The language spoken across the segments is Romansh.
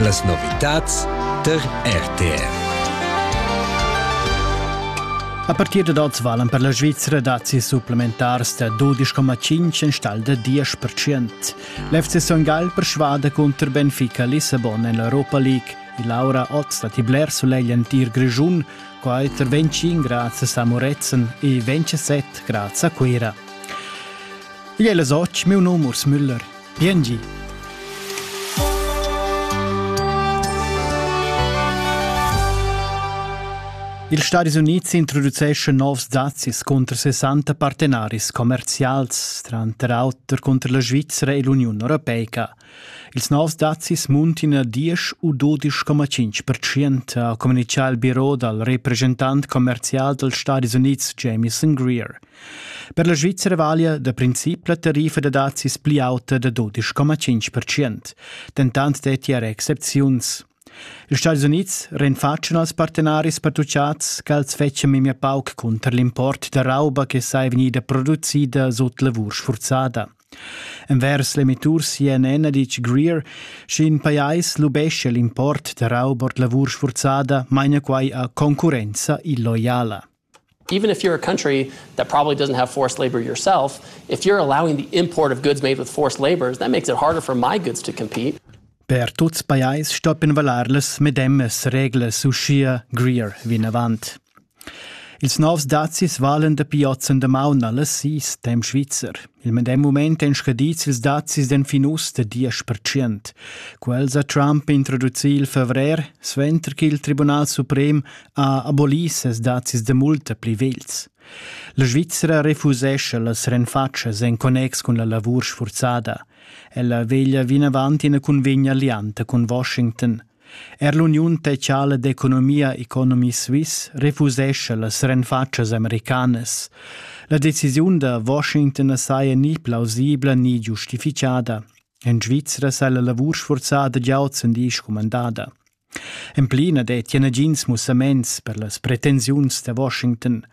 Las novitads tar RTR. A partir dad oz valan per la Svizra dazis supplementars da 12,5 enstagl da 10%. L'FC Son Gall persvada cunter Benfica Lissabon en l'Europa League. Il Laura oz datti bler sulegl entir Grischun, qua er 25 grazie a Moretzen e 27 grazie a Cuira. Igl è Soc, meu nom Urs Müller. Piengi. Ils Stadis Unids introduceschan novs dazis cunter 60 partenaris commerzials, tranter auter cunter la Svizzera e l'Uniun Europeica. Ils novs dazis muntin a 10 u 12,5%, ha communitgà il biro dal represchentant commerzial dals Stadis Unids Jameson Greer. Per la Svizzera valia da princip la tariffa da dazis pli auta da 12,5%, dentant detti era excepziuns. Ils Stati Unids rinfatschan als partenaris pertuchads ch'els fetschan memia pauc cunter l'import da rauba che sei vegnida producida sut lavur sfurzada. Envers l'emittur CNN ha ditg Greer, sch'in pajais lubescia l'import da rauba ord lavur sfurzada, maina quai a concurrenza illoiala. even if you're a country that probably doesn't have forced labor yourself, if you're allowing the import of goods made with forced labours, that makes it harder for my goods to compete. Per tuts pajais stoppin valar las medemas reglas uschia Greer vinavant. Ils novs dazis valen dapi oz en damaun alles is dem Schweizer. Il medem moment èn scadits ils dazis den finus da diesch percent. Quels ha Trump introducì il favrer, suenter che il Tribunal suprem ha abolì ses dazis da multa pli vegls. La Svizzera refusescha las renfatschas en connex cun la lavur sfurzada. Ella veglia vinavant ina cunvegna lianta cun Washington. Er l'Uniun Tecciala d'Economia Economy Suisse refusescha las renfatschas americanas. La decisiun da Washington saja ni plausibla ni giustifichada. En Svizzera sei la lavur sforzada già ozendi scumandada. En pli na dettia nagins mussaments per las pretensiuns da Washington.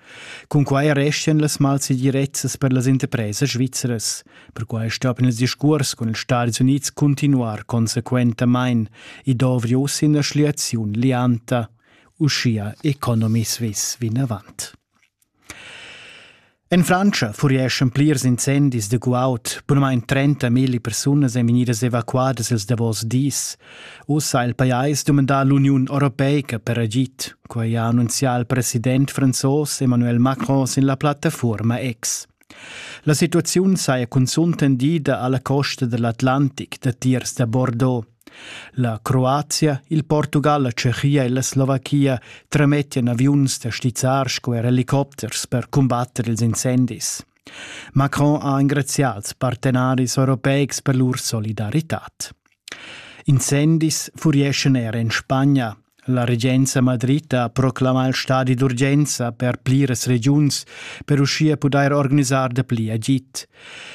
Cunquai restian las malsegirezzas per las interpresas svizras. Perquai stoppien il discurs cun ils Stadis Unids continuar consequentamain, i dovri uss ina schliaziun lianta. Uschia Economy Suisse vinavant. En Frantscha furieschan plirs incendis da guaud. Bunamain 30 milli persunas èn vegnidas evacuadas ils davos dis. Ussa ha il pajais dumandà l'Uniun europeica per agid. Quai ha annunzià il president franzos Emmanuel Macron sin la plattafuorma X. La situaziun saja cunzunt tendida a la costa dell'Atlantic datiers da Bordeaux. La Croazia, il Portugal, la Tschechia e la Slovachia tramettian aviuns da stizzar sco er helicopters per cumbatter ils incendis. Macron ha engrazià als partenaris europeics per lur solidaritad. Incendis furieschan er en Spagna. La regenza Madrid ha proclamà il stadi d'urgenza per pliras regiuns per uschia pudair organisar da pli agid.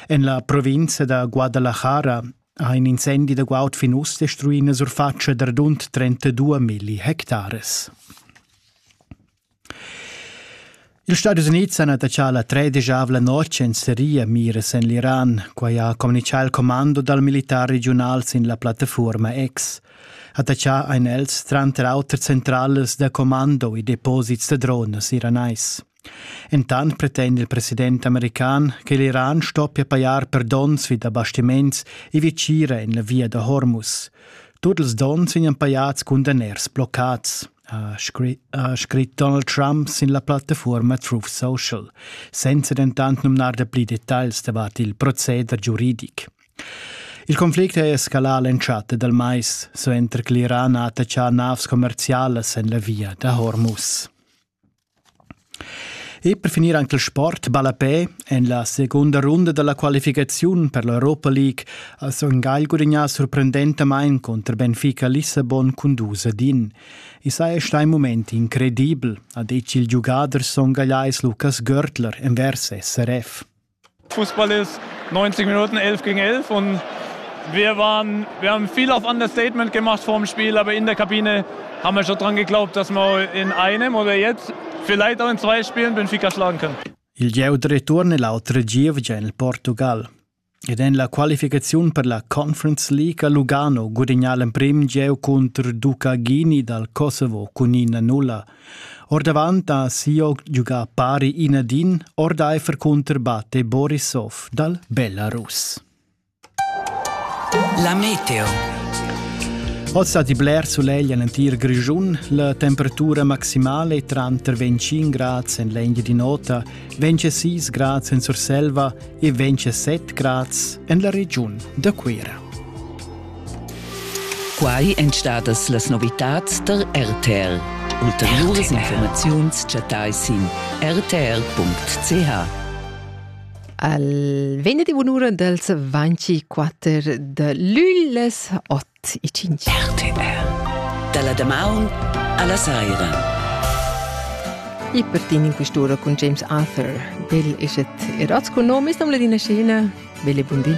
En la provinza da Guadalajara Ha in incendi da guaud fin uss destruì ina surfatscha da radund 32 milli hectares. Ils Stadis Unids han attaccà la tredesavla notg en Siria miras en l'Iran. Quai ha communitgà il commando dal militar regiunal sin la plattafuorma X. Attaccà ein els tranter auter centrales da commando e deposits da dronas iranais. Entant pretenda il president american che l'Iran stoppia pajar per donns vi da bastiments e vitgira en la via da Hormuz. Tut ils donns vegnan pajads cun daners bloccads, ha scrit Donald Trump sin la plattafuorma Truth Social, senza dentant numnar da pli detagls davart il proceder giuridic. Il conflict è escalà l'entschatta dal mais, suenter che l'Iran ha attaccà navs commerzialas en la via da Hormuz. E per finir anche il sport ballapè. En la segunda runda della qualificaziun per l'Europa League ha Son Gagl gudagnà sorprendentamain contro Benfica Lissabon cun dus din. I saja stà un moment incredibel, ha detg il giugader songagliais Lukas Görtler envers SRF. Fußball ist 90 Minuten 11 gegen 11 und wir, waren, wir haben viel auf Understatement gemacht vor dem Spiel, aber in der Kabine haben wir schon dran geglaubt, dass wir in einem oder jetzt vielleicht auch in zwei Spielen Benfica schlagen können. Il gieu de ritorno è l'altro giovane nel Portugal. Ed è la qualificazione per la Conference League a Lugano guadagnò il primo gieu contro Ducaghini dal Kosovo con 1-0 Ordavant ha Sioc giugà pari in ad in ordaifer cunter batte Borisov dal Belarus. La meteo. Oz stati bler solegl en entir Grischun. La temperatura maximale tranter 25 grads en l'Engia di Nota, 26 grads en Surselva e 27 grads en la regiun da Cuira. Quai èn stadas las novitads tar RTR. Ulteriuras informaziuns chattai sin rtr.ch. Al venerdì un'ura dals 24 de lülles 8 e 5. RTR. Dalla damaun alla saira. E per tin in quest'ora con James Arthur. Bel eschet erots con nomis, nom ladina scena. Belle bundi.